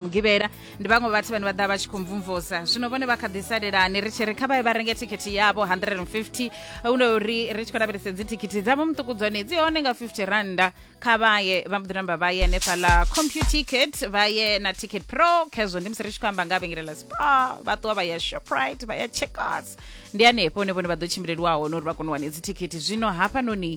mugivhela ndi vhaṅwe vhathu vhane vha ḓa vha tshi khou mvumvusa zwino vhone vha kha ḓi salelani ri tshi ri kha vhaye vha renge thikhithi yavho 150 une uri ri tshi khou lavhelesa dzi thikhithi dzavho muṱuku dzone dzi hone nga 50 randa kha vhaye vha mbo ḓi namba vha ye hanefhaḽa computicket vha ye na ticket pro khezwo ndi musi ri tshi khou amba nga vhengele ḽa spar vha ṱuwa vha ya shoprite vha ya checkers ndi hanefho hone vhone vha ḓo tshimbileliwa hone uri vha kone u wane dzi thikhithi zwino hafhanoni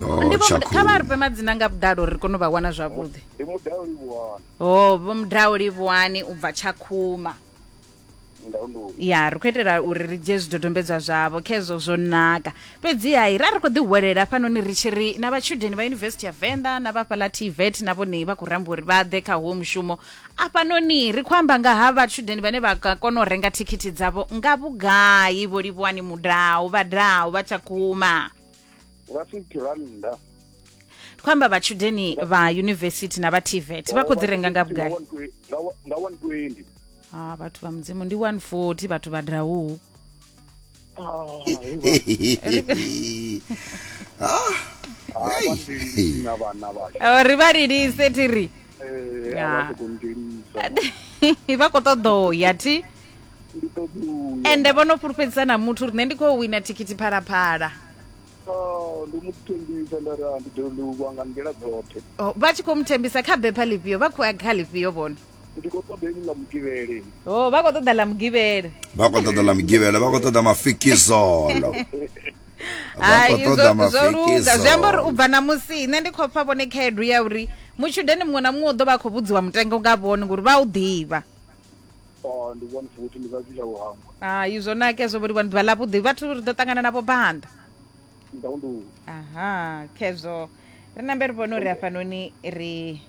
Oh, ndi vho Muda- kha vha ri fhe madzina nga vhuḓalo uri ri kone u vha wana zwavhuḓi ndi mudao livhuwana o vho mudao livhuwani u bva tshakhuma ndaunduni ya ri khou itela uri ri dzhie zwidodombedzwa zwavho khezwo zwo naka fhedzi hai ra ri khou ḓihwelela hafhanoni ri tshi ri na vhatshudeni vha yunivesithi ya venḓa na vhafhaḽa tvet na vhone vha khou ramba uri vha ḓe kha huwo mushumo afhanoni ri khou amba nga ha vhatshudeni vhane vha ka kona u renga thikhithi dzavho nga vhugai vho livhuwani mudau vhadau vha tshakhuma nga 50 rannda khou amba vhatshudeni vha yunivesithi na vha tvet vha khou dzi renga nga vhugai nga 120 ha ah, vhathu vha mudzimu ndi 140 vhathu vha drauu ah, ah, ri vha lilise ti ri eh, vha khou ṱoḓo ya ti ndi ṱoḓi u ya ende vho no fhulufhedzisa na muthu uri nṋe ndi khou wina thikhithi phalaphala Oh, ndi mu thembisa nda ra ndi ḓo livhuwa nga nḓila dzoṱhe Oh, vha tshi khou muthembisa kha bepha ḽifhio vha khou ya kha ḽifhio vhone ndi khou ṱoḓa ini ḽa mugivhele o vha khou ṱoḓa ḽa mugivhele vha khou ṱoḓa ḽa mugivhela vha khou ṱoḓa mafikizolo vha hai khou ṱoḓa zwo zwo luga zwi amba uri u mafikizolo bva na musi nṋe ndi khou pfa vhone khaedu ya uri mutshudeni muṅwe na muṅwe u ḓo vha a khou vhudziwa mutengo nga vhone ngori vha u ḓivha ndi vhone futhi ndi vhathu tsha u hangwa hai zwo nake zwo vholiwa ḓuvha ḽa vhuḓi vhathu ri ḓo ṱangana navho banda ndaundu aha khezwo ri nambe ri vhone uri hafhanoni ri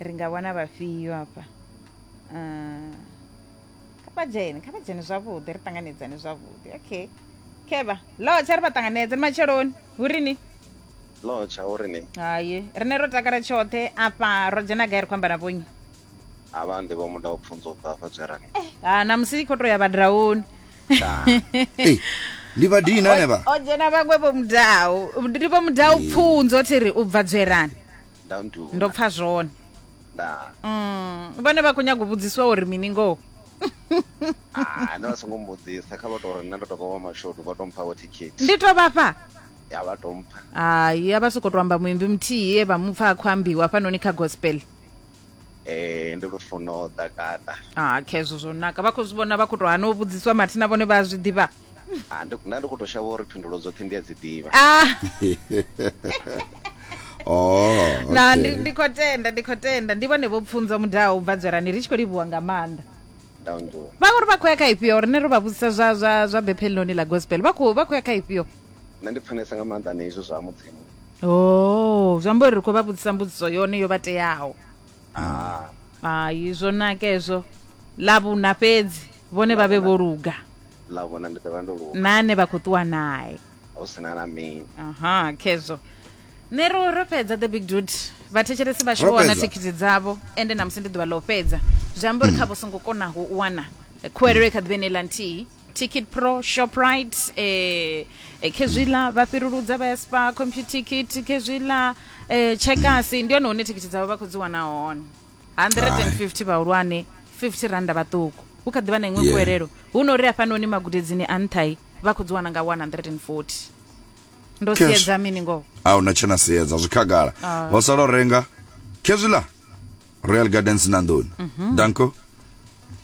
ri nga wana vhafhio hafha ah, kha vha dzhene kha vha dzhene zwavhuḓi ri ṱanganedzane zwavhuḓi okay khevha lotsha ri vha ṱanganedze ni matsheloni hu rini lotsha hu rini haye rine ro takala tshoṱhe afha ro dzhena gai ri khou amba na vhonyi ha vha ndi vho muda u pfunza u bva fa dzwerani ha na musi kho to ya vhadrauni Ei, ndi vhadini nane vha o dzhena vhaṅwe vho mudau ndi vho mudau pfunzo thi ri u bva dzwerani nda ndu ndo pfa zwone nda Mm, vhone vha khou nyaga u vhudziswa uri mini ngoho ah no songo mbudzisa kha vha to ri nṋe ndo to vha wa mashodu vha to mpha vho ticket ndi to vhafha ya vha to mpha hayi a vha sokou to amba muimbi muthihi e vha mupfa a khou ambiwa hafhanoni kha gospel eh ndi lufuno ḓa kata ah khezwo zwo naka vha khou zwi vhona vha khou tou hana u vhudziswa mathina vhone vha a zwi ḓivha ah ndi nda ndi khou tou shavha uri phindulo dzoṱhe ndi a dzi ḓivha ah oh na ndi ndi khou tenda ndi khou tenda ndi vhone vho pfunza mudaho u bva dzwerani ri tshi khou livhuwa nga maanḓa ndangu vha uri vha khou ya kha ifhio rine ro vha vhudzisa zwa zwa zwa bepheloni ḽa gospel vha khou vha khou ya kha ifhio nṋe ndi pfanesa nga maanḓa na izwo zwa mudzimu o oh, zwi amba uri ri khou vha vhudzisa mbudziso yone yo vha teaho ah. hai zwo naka ezwo ḽa vhuna fhedzi vhone vha vhe vho luga ḽa vhuna ndi ḓovha ndo luga na ane vha khou ṱuwa nae hu si na na mini aha khezwo nṋe ro ro fhedza the big dude vhathetshelesi vhashu vho wana thikhithi dzavho ende namusi ndi ḓuvha ḽa u fhedza zwi amba uri kha vho songo konaho u wana khuwelelo i kha ḓivha ine ḽa nthihi ticket pro shoprite eh, eh, khezwiḽa vha fhiruludza vha ya spa computicket khezwiḽa eh, tshekasi ndi hone hune thikhithi dzavho vha khou dzi wana hone 150 vhahulwane 50 randa vhaṱuku hu kha ḓi vha na iṅwe Yeah. kuelelo hu no uri hafhanoni magudedzini a nṱhai vha khou dzi wana nga 140 ndo Cash. siedza mini ngoho a una tshena sedza zwi khagala ho sala u renga khezwiḽa royal gardens na nḓuni danko